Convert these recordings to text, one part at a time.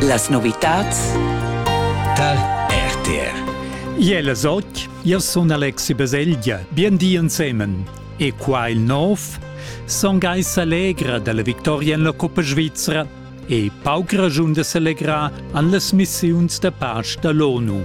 Las novitads tar RTR. Iel es och, io sun Alexi Baselgia, bien di ensemen. E qua il nov, son gais allegra dalla victoria in la Coppa Svizra e pauc ragiun de s'allegrar an las missiuns da pace da l'ONU.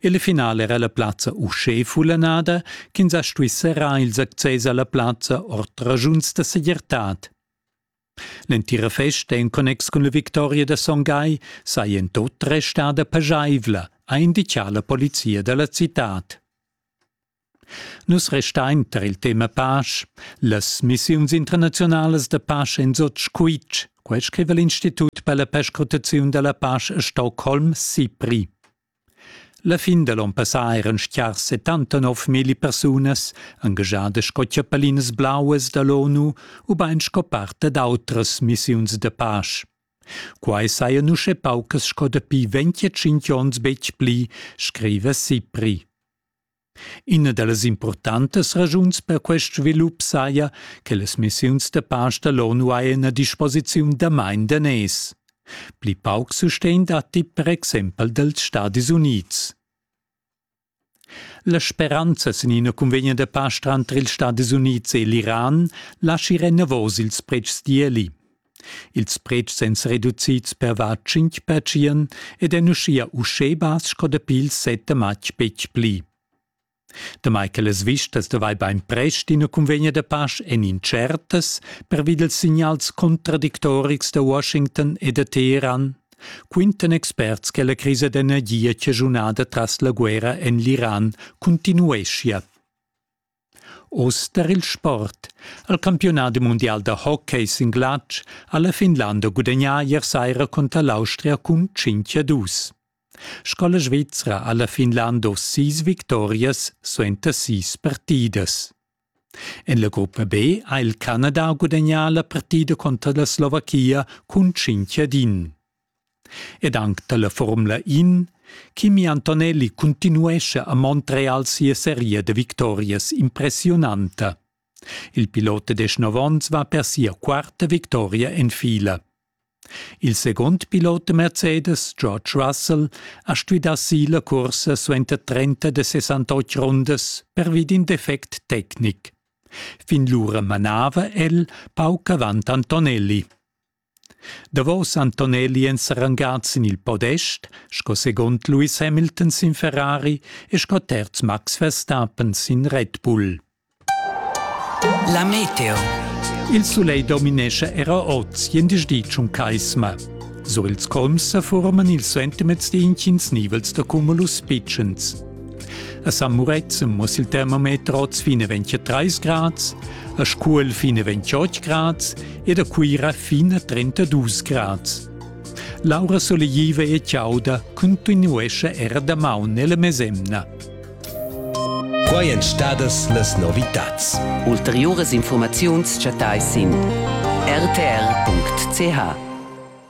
Il final era la plazza uschè fullanada ch'ins ha stuì serrar ils access a la plazza ord raschuns da segirtad. L'entira festa en connex cun la victoria da Son Gai saja en tut restada paschaivla, ha inditgà la polizia da la citad. Nus restain tar il tema pasch. Las missiuns internaziunalas da pasch èn sut squitsch. Quai scriva l'Institut per la perscrutaziun da la pasch a Stockholm, SIPRI. La fin da l'onn passà eran stiars 79.000 persunas engagiadas sco chiappalinas blauas da l'ONU ubain sco part dad autras missiuns da pasch. Quai sajan uschè paucas sco dapi 25 onns betg pli, scriva SIPRI. Ina da las impurtantas raschuns per quest svilup saja che las missiuns da pasch da l'ONU hajan a disposiziun damain daners. Pli pauc sustegn datti per exempel dals Stadis Unids. La speranza sin ina cunvegna da pasch tranter ils Stadis Unids e l'Iran laschi enavos ils pretschs d'ieli. Ils pretschs èn reducids per var tschintg pertschien ed èn uschia uschè bass sco dapi il set da matg betg pli. Damai che las vistas da vai bainprest ina cunvegna da pasch èn incertas pervi dals signals contradictorics da Washington e da Teheran, quintan experts che la crisa d'energia chaschunada tras la guerra en l'Iran cuntinueschia. Oz tar il sport. Al campiunadi mundial da hockey sin glatsch ha la Finlanda gudagnà ier saira cunter l'Austria cun 5 a 2. Scola svizra ha la Finlanda oz sis victorias suenter sis partidas. En la gruppa B ha il Canada gudagnà la partida conter la Slovachia cun 5 ad 1. ed anc dalla Formula In Kimi Antonelli cuntinuescha a Montreal sia seria da victorias impressiunanta. Il pilot da deschnov onns va per sia quarta victoria en fila. Il second pilot da Mercedes, George Russell, ha stuì si la cursa suenter 30 da 68 rundas pervi d'in defect tecnic. Fin lura manava el pauc avant Antonelli. Davos Antonelli èn sa rangats sin il podest sco segund Lewis Hamilton sin Ferrari e sco terz Max Verstappen sin Red Bull. La meteo. Il sulegl dominescha era oz jendisch di tschun caisma. Sur ils colms sa forman ils sentiments d'intgins nivels da cumulus pitschens. A San Murezzan muss il termometer oz fine 23 grads, a Scuol fine 28 grads ed a Cuira fine 32 grads. Laura Solegiva e Ciauda continuesce era da maun nella mesemna. Quai èn stadas las novitads. Ulteriuras informaziuns chattai sin rtr.ch.